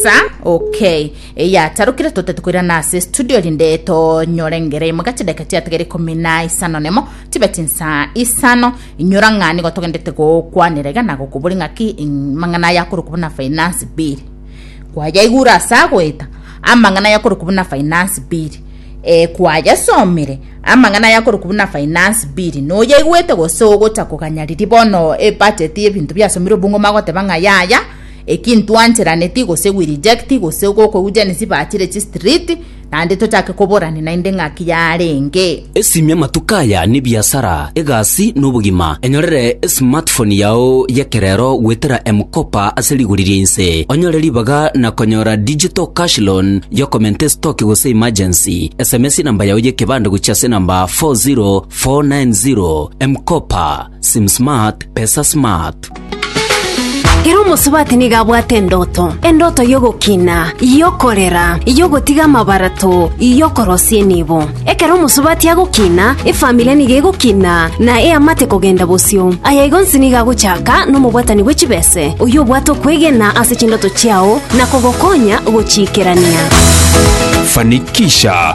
Sa, ok. Eyatarokire totete koirana ase studio rinde tonyore engere imo ga chidakika chiatigere ikomi na isano nemo tibeti nsa isano inyora ng'a nigo togendete gokwanera iga na gokobori ng'aki ing- mang'ana aya akorokwa buna finance bill kwayaigure ase agoeta amang'ana aya akorokwa buna finance bill eh, kwayasomire amang'ana aya akorokwa buna finance bill noyaigwete gose ogocha koganya riria bono ebudget y'ebinto biasomirwe bung'uma goteba ng'a yaya Eki ntwancheraneti gose we reject gose gokoujani sibachire chi street naende tochake koborani naende ng'aki yarenge. Esimia amatuko aya nebiasara, egasi, na obogima. Enyorere esmartphone yao y'ekerero goetera M-Kopa ase rigori ria inse. Onyore ribaga na konyora digital cash loan y'okomenta estoki gose emergency. Sms enamba yao y'ekebande gochia ase enamba 40490. M-Kopa. Sim smart, pesa smart. Ere omosubati nigo abwate endoto, endoto y'ogokina, y'okorera, y'ogotiga amabarato, y'okorosia enibo. Ekero omosubati agokina, efamiri nigo egokina, na eamate kogenda bosio. Aya igo nsi nigo agochaka nomobwatani bwe chibese, oyio obwate okwegena ase chindoto chiao na kogokonya gochiikerania. Fanikisha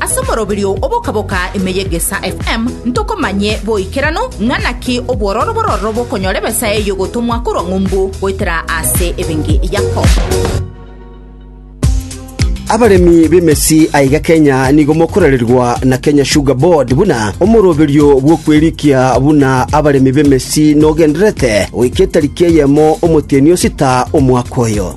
Ase omoroberio oboka-boka ime y'Egesaa FM ntokomanye boikeranu ng'a naki obwororo bororo bokonyora ebesa eye y'ogotomwa korwa ng'umbu goetera ase ebenge Yakobo. Abaremi b'emesi aiga Kenya nigo mokorererwa na Kenya Sugar Board buna omoroberio bw'okwerikia buna abaremi b'emesi nogenderete goika etariki eyemo omotienyi osita omwaka oyo.